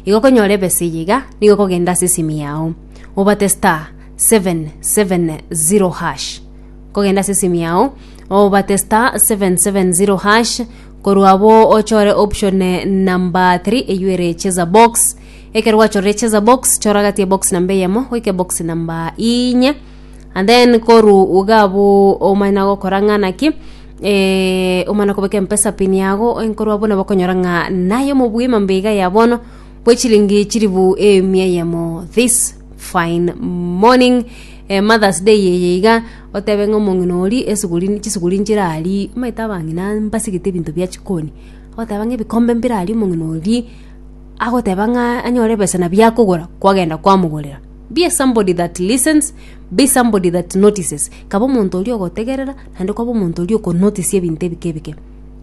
Igo okonyora ebesa eye iga, nigo okogenda ase esimi yao, obate star 770 hash. Okogenda ase esimi yao, obate star 770 hash, korwa abo ochore option namba 3 eywo ere cheza box. Ekero gwachorire cheza box, chora gati ebox namba eyemo goika ebox namba inye. and then koru iga abwo omanye na gokora ng'a naki eh, omanye na kobeka empesa pin yago enkorwa buna bakonyora ng'a naye omobwima mbe iga ya bono bwe chiringi chiribu emia eyemo this fine morning eh, mothers day eye iga otebe ng'a omong'ina ori esuguri chisuguri nchirari omanyete abang'ina mbasegete ebinto bia chikoni agoteba ng'a ebikombe mbirari omong'ina oria agoteba ng'a anyore ebesa nabia akogora kwagenda kwamogorera Be somebody that listens, be somebody that notices. Kaba omonto oria ogotegerera, naende kwaba omonto oria okonotisia ebinto ebike ebike.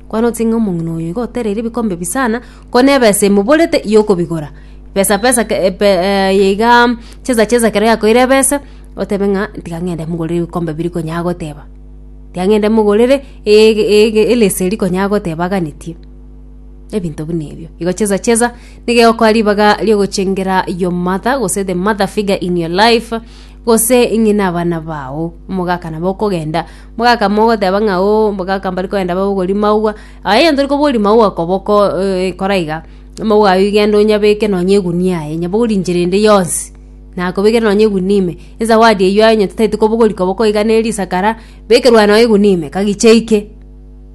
Kwanotisie ng'a omong'ina oyo iga otereire ebikombe ebi sana, ko na ebesa emoborete yokobigora. Pesa pesa ke- e- pe- e- eye iga chesa chesa ekero yakoire ebesa, otebe ng'a tiga ng'ende mogorere ebikombe biri konya agoteba. Tiga ng'ende mogorere ege- ege elesa eri konya agoteba aganetie. Ebinto buna ebio. Igo cheza cheza nige okwa ribaga riogochengera your mother gose the mother figure in your life gose ing'ina abana bao omogaka nabo okogenda omogaka mogoteba ng'a o omogaka mbari kogenda babogori maua aye onye tori kobori maua koboko eh, kora iga maua ayio genda onyabeke nonye egunia aye nyabogori enchera ende yonsi nakobekere nonye egunia ime ezawadi eyio aye onye totaeti kobogori koboko iga neri isakara bekerwa nonye egunia ime kagicha eike.